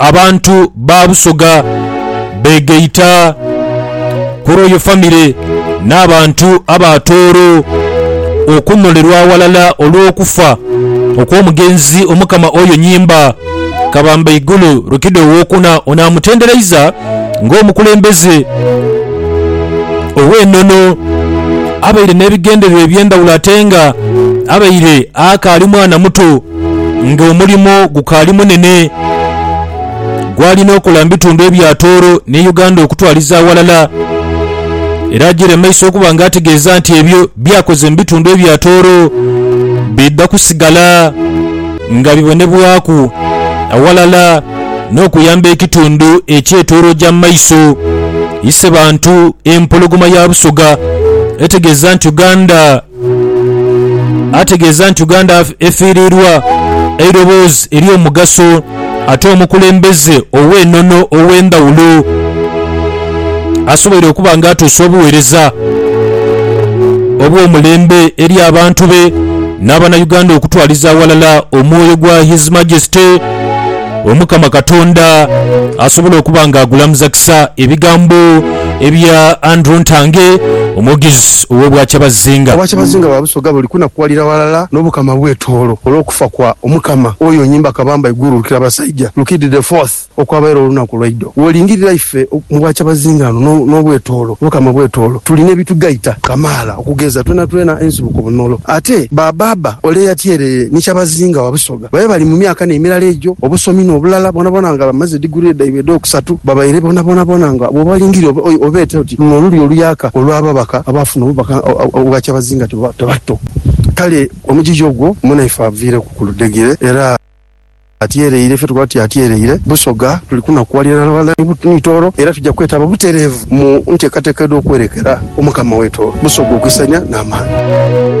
Abantu ba Busoga beegaita ku lw'oyo famire n'abantu aba Tooro okunolerwa aghalala olw'okufa okw'omugenzi Omukama Oyo Nyimba Kabambaigulu Rukida Owokuna ono amutendereiza nga omukulembeze ow'enono abaire n'ebigendererwa eby'endhawulo atenga abaire akaali mwana muto. ng'omulimo gukaali munene gw'alina okola mu bitundu ebya Tooro ne Uganda okutwaliza aghalala era ajiire mu maiso okuba nga ategeeza nti ebyo by'akoze mu bitundu ebya Tooro bidha kusigala nga bibonebwaku aghalala n'okuyamba ekitundu eky'e Tooro oja mu maiso. Isebantu Empologoma ya Busoga etegeeza nti Uganda ategeeza nti Uganda efiiriirwa eiroboozi ery'omugaso ate omukulembeze ow'enono ow'endhawulo asoboire okuba nga atuusa obuweereza obw'omulembe eri abantu be n'abanauganda okutwaliza aghalala omwoyo gwa His Majesty. Omukama Katonda asobole okuba nga agulamuza kisa ebigambo ebya Andrew Ntange, omwogezi ow'Obwakyabazinga. Obwakyabazinga bwa Busoga buli kunakuwalira ghalala n'Obukama bw'e Tooro olw'okufa kwa Omukama oyo Nyimba Kabamba Iguru Lukirabasaija Rukidi the Fourth okwabaire olunaku lwaidho. W'olingirira ife mu Bwakyabazinga no n'obw'e Tooro, Obukama bw'e Tooro, tulina ebitugaita kamaala okugeza, twenatwena ensibuko bunolo. Ate Baabaaba ole yatyerere ni Kyabazinga wa Busoga. Babe bali mu myaka n'emirala egyo, obusomi n'obulala bwonabwona nga bamaze diguree dhaibwe edh'okusatu, babaire bonabonabona nga bw'obalingiria obeete oti, Luno luli oluyaka olw'ababaka abaafuna obubaka obwa kyabazinga tibatto. Kale omugigi ogwo munaife aviireku ku ludhegere era atyereire, ife tukoba tuti atyereire Busoga. Tuli kunakuwalira ghalala ni Tooro era tuja kwetaba butereevu mu nteekateeka edh'okwerekera Omukama waitu Busoga okwisaania n'amaani.